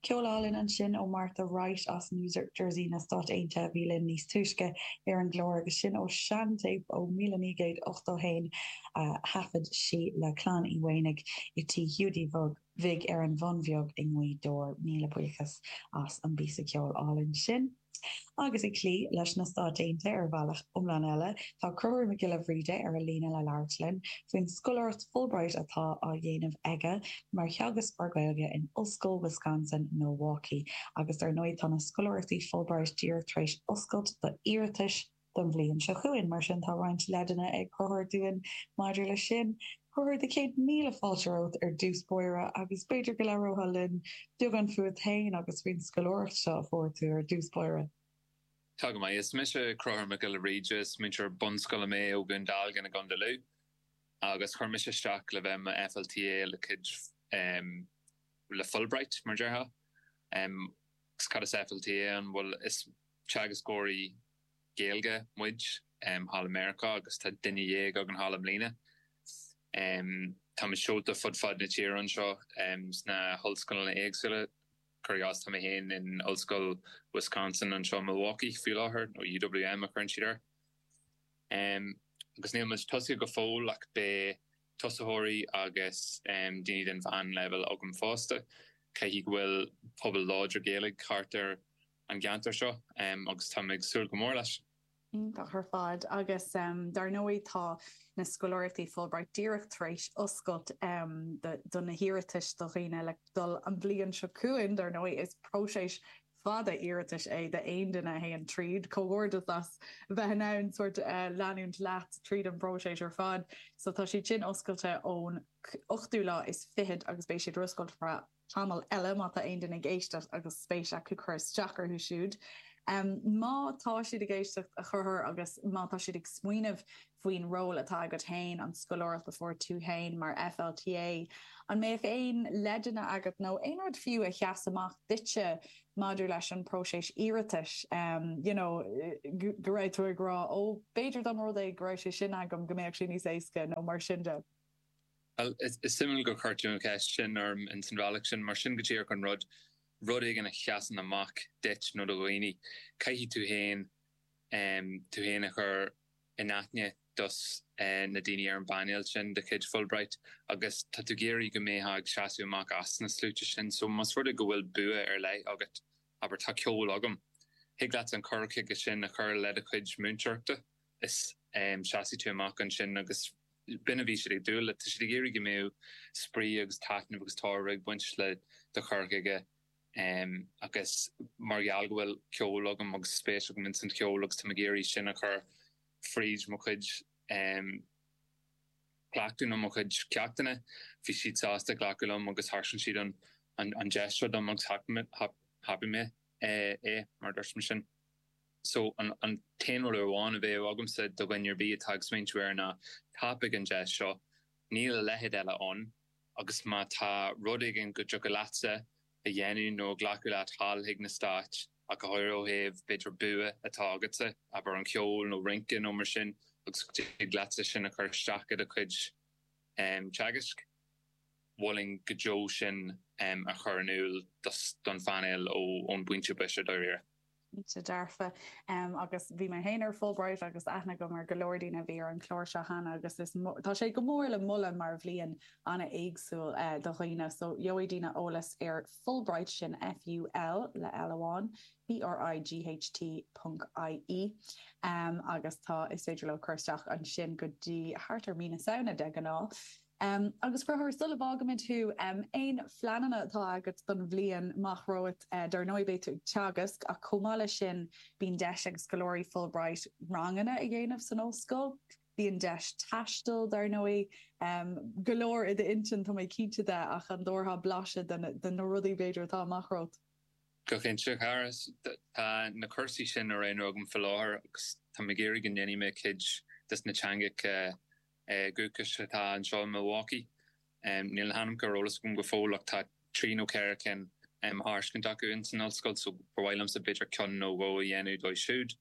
Ceol álainn ansin ó Martha Wright as New Jersey na Stáit Aontaithe a bhí linn níos túisce ar an gclár agus sin ó seantéip ó míle naoi gcéad ochtó a haon a thaifead sí le Clann Uí Mhaonaigh i dTí Hiúdaí Bhig ar an Bhun Bheag i nGaoth Dobhair. Míle buíochas as an bpíosa ceoil álainn sin. Agus ag cloí leis na Stáit Aontaithe ar bhealach iomlán eile, tá Conchúr Mac Giolla Bhríde ar an líne le labhairt linn faoin scoláireacht Fulbright atá á dhéanamh aige mar theagascóir Gaeilge in Ollscoil Wisconsin, Milwaukee. Agus dar ndóigh, tá na scoláireachtaí Fulbright díreach tar éis oscailt do iarratais. don bhliain seo chugainn. Mar sin, tá roinnt leaideanna ag Conchúr dúinn maidir leis sin. A Chonchúir, céad míle fáilte romhat ar dtús báire agus b'fhéidir go labhrófá linn beagán fúat féin agus faoin scoláireacht seo a fuair tú ar dtús báire. Tá go maith. Is mise Conchúr Mac Giolla Bhríde. Is múinteoir bunscoile mé ó Dhún Dealgan i gContae Lú agus chuir mise isteach le bheith i mo FLTA le cuid le Fulbright, mar déarfá. Agus cad is FLTA ann? Bhuel, is teagascóirí Gaeilge muid, thall i Meiriceá, agus tá duine dhéag againn thall i mbliana. Táimid seolta fud fad na tíre anseo, sna hollscoileanna éagsúla. Cuir i gcás, tá mé féin in Ollscoil Wisconsin anseo i Milwaukee faoi láthair, nó UWM a thugann siad air. Agus níl muid tosaithe go fóill, ach beidh tosaitheoirí agus daoine den mheánleibhéal agam fosta, creidim go bhfuil pobal láidir Gaeilge thart ar an gceantar seo agus táim ag súil go mór leis. Iontach ar fad. Agus dar ndóigh tá na scoláireachtaí Fulbright díreach tar éis oscailt do na hiarratais do dhaoine le dul an bhliain seo chugainn. Dar ndóigh is próiseas fada iarratais é d'aon duine a théann tríd, comhghairdeas as bheith in ann sórt leanúint leat tríd an bpróiseas ar fad. So tá siad sin oscailte ón ochtú lá is fichead agus beidh siad oscailte ar feadh tamall eile má tá aon duine ag éisteacht agus spéis acu cur isteach orthu siúd. Má tá siad ag éisteacht, a Chonchúir, agus má tá siad ag smaoineamh, faoin ról atá agat féin, an scoláireacht a fuair tú féin mar FLTA, an mbeadh aon leideanna agat nó aon rud fiú a sheas amach duitse maidir leis an bpróiseas iarratais, you know, go raibh tú ag rá, ó, b'fhéidir dá mba rud é go raibh sé sin agam go mbeadh sé níos éasca nó mar sin de? Bhuel, is suimiúil gur chuir tú an cheist sin orm ins an bhealach sin, mar sin é go díreach an rud, rud éigin a sheasann amach duit nó do dhaoine, caithfidh tú féin, em, tú féin a chur, in aithne dos na daoine ar an bpainéal sin de chuid Fulbright agus tá tú ag iarraidh go mbeifeá ag seasamh amach as na sluaite sin. So, más rud é go bhfuil bua ar leith agat, abair, 'tá ceol agam', thig leat an cur chuige sin a chur le do chuid múinteoireachta is seasfaidh tú amach ansin agus b'in a bhí siad ag dúil leis. Tá siad ag iarraidh go mbeadh spraoi agus taitneamh agus tairbhe ag baint le do chur chuige. Agus mar gheall go bhfuil ceol agam agus spéis agam ins an cheol agus táim ag iarraidh sin a chur fríd mo chuid cleachtaí nó mo chuid ceachtanna, bhí siad sásta glacadh liom agus thairg siad an deis seo dom agus thapaigh mé é, mar a dúirt mé ansin. So, an t-aon rud amháin a bheadh agamsa do dhuine ar bith atá ag smaointiú air ná, tapaigh an deis seo, níl a leithéid eile ann. Agus má tá rud éigin go dtiocfadh leatsa a dhéanamh nó a ghlacadh leat sall chuig na Stáit, ach go háirithe ó thaobh, b'fhéidir, bua atá agatsa, abair, an ceol nó rince nó mar sin, agus go dtig leatsa sin a chur isteach i do chuid teagaisc, mholfainn go deo sin a chur in iúl don phainéal ón bpointe boise, dáiríre. Cinnte dearfa. Agus bhí mé féin ar Fulbright agus aithne agam ar go leor daoine a bhí ar an chlár seo cheana agus tá sé go mór le moladh mar bhliain an-éagsúil do dhaoine. So, gheobhaidh daoine eolas ar Fulbright, sin F-u-l, le L amháin, B-r-i-g-h-t ponc I-e. Agus tá, is féidir leo cur isteach ansin go dtí thart ar mí na Samhna de ghnáth. Agus Cruthú, sula bhfágaimid thú, aon phleananna atá agat don bhliain amach romhat. Dar ndóigh, beidh tú ag teagasc, ach chomh maith leis sin, bíonn deis ag scoláirí Fulbright ranganna a dhéanamh san ollscoil. Bíonn deis taistil, dar ndóigh. Go leor i d'intinn, tá mé cinnte de, ach an dtabharfá blaiseadh de na rudaí, b'fhéidir, atá amach romhat? Go cinnte, a chara. Tá na cúrsaí sin á roghnú agam faoi láthair, agus táim ag iarraidh go ndéanfaidh mé cuid de na teangacha. dúchais atá anseo i Milwaukee. Níl na hainmneacha ar eolas agam go fóill ach tá trí nó ceithre cinn á dtairiscint acu ins an ollscoil so ba mhaith liomsa b'fhéidir ceann nó dhó a dhéanamh díobh siúd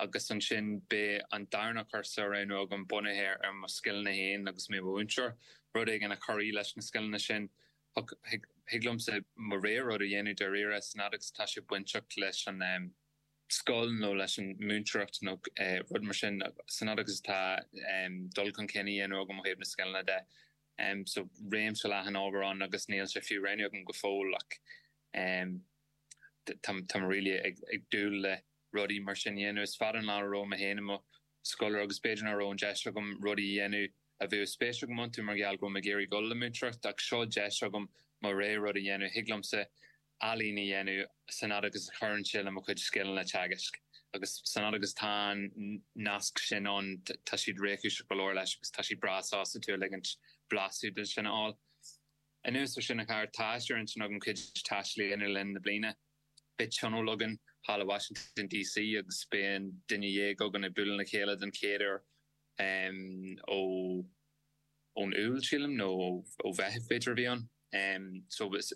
agus ansin beidh an darna cúrsa á roghnú agam bunaithe ar mo scileanna féin agus mé i mo mhúinteoir rud éigin a chuirfidh leis na scileanna sin. Thig liomsa mo rogha rud a dhéanamh dáiríre a fhad agus atá sé bainteach leis an scoil nó leis an múinteoireacht nó rud mar sin a fhad agus atá dul chun cinn á dhéanamh agam ó thaobh na scileanna de. So réimse leathan ábhar ann agus níl sé fiú roghnaithe agam go fóill ach táim really ag dúil le rudaí mar sin a dhéanamh. Is fada an lá ó bhí mé féin i mo scoláire agus b'fhéidir nach raibh an deis agam rudaí a dhéanamh a bheadh spéis agam iontu mar gheall go raibh mé ag iarraidh dul le múinteoireacht ach seo deis agam mo rogha rud a dhéanamh. Thig liomsa. ealaín a dhéanamh a fhad agus a chuireann sé le mo chuid scileanna teagaisc. Agus a fhad agus atá an nasc sin ann, tá siad réchúiseach go leor leis agus tá siad breá sásta tú a ligint blaiseadh de sin a fháil. Anuas ar sin, a Chathair, tá sé ar intinn agam cuid taistil a dhéanamh le linn na bliana. Beidh tionól againn thall i Washington DC agus beidh aon duine dhéag againn ag bualadh le chéile den chéad uair ó. ón Iúil, sílim, nó ó Mheitheamh, b'fhéidir, a bhí ann, so is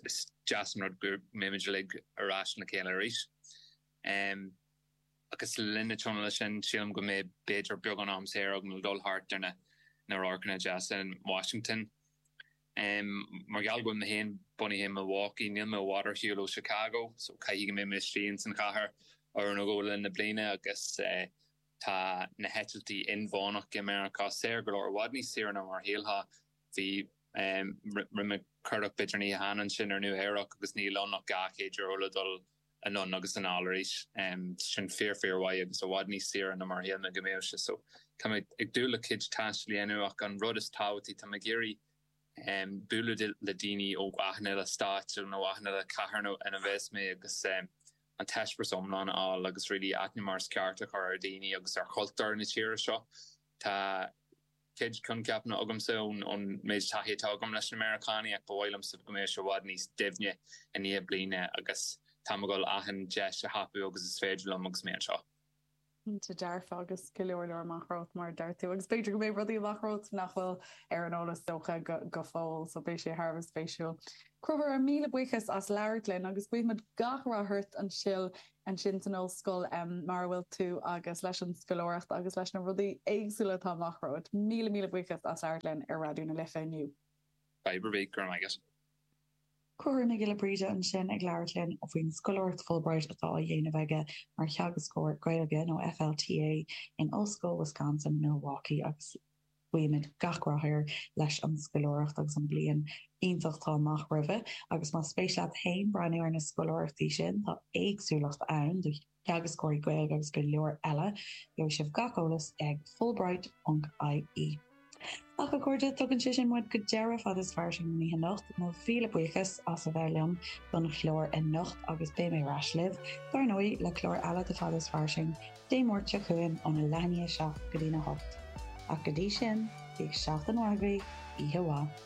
deas an rud go mbeimid uilig ar ais le chéile arís. Agus le linn na tionóil sin, sílim go mbeidh b'fhéidir beagán am saor agam le dul thart ar na radharcanna deasa in Washington. Mar gheall go bhfuil mé féin bunaithe i Milwaukee, níl mé i bhfad ó Chicago, so caithfidh go mbeidh mé istigh ins an chathair uair nó dhó le linn na bliana, agus. Tá na heitiltí inmheánach i Meiriceá saor go leor, i bhfad níos saoire ná mar a shílfeá. Bhí mé ag amharc beidh deireanaí ansin ar Nua Eabhrac agus níl ann ach dhá chéad dollar le dul anonn agus anall arís. Sin fíor fíor mhaith agus i bhfad níos saoire ná mar a shíl mé go mbeadh sé. So, tá mé ag dúil le cuid taistil a dhéanamh ach an rud is tábhachtaí, tá mé ag iarraidh bualadh le daoine ó achan uile stáit nó achan uile cathair ina bheas mé agus an t-eispéireas iomlán a fháil agus really aithne mar is ceart a chur ar dhaoine agus ar chultúr na tíre seo. Tá cuid coincheapanna agamsa ón méid taithí atá agam leis na Meiriceánaigh ach ba mhaith liomsa go mbeadh sé i bhfad níos doimhne i ndiaidh bliana agus táim ag dul achan deis a thapú agus is féidir liom agus mé anseo. Cinnte dearfa, agus go leor leor amach romhat, mar a deir tú. Agus b'fhéidir go mbeidh rudaí amach romhat nach bhfuil ar an eolas, dócha, go fóill. So beidh sé thar a bheith spéisiúil. A Chonchúir, míle buíochas as labhairt linn, agus guífidh muid gach rath ort ansin insan ollscoil mar a bhfuil tú, agus leis an scoláireacht, agus leis na rudaí éagsúla atá amach romhat. Míle míle buíochas as labhairt linn ar Raidió na Life inniu. Fadhb ar bith. Go raibh maith agat. Conchúr Mac Giolla Bhríde ansin ag labhairt linn faoin scoláireacht Fulbright atá á dhéanamh aige mar theagascóir Gaeilge, nó FLTA, in Ollscoil Wisconsin, Milwaukee agus guímid gach rath air leis an scoláireacht agus an bhliain iontach atá amach roimhe. Agus más spéis leat féin breathnú ar na scoláireachtaí sin, tá éagsúlacht ann do Teagascóirí Gaeilge agus go leor eile. Gheobhaidh sibh gach eolas ag Fulbright.ie. Ach, a chairde, tugann sé sin muid go deireadh fada is fairsing na hoíche anocht. Mo mhíle buíochas as a bheith liom don chlár anocht agus beidh mé ar ais libh, dár ndóigh, le clár eile de Fada is Fairsing Dé Máirt seo chugainn óna leathuair tar éis a seacht go dtína hocht. Ach go dtí sin, bíodh seachtain mhaith agaibh, oíche mhaith.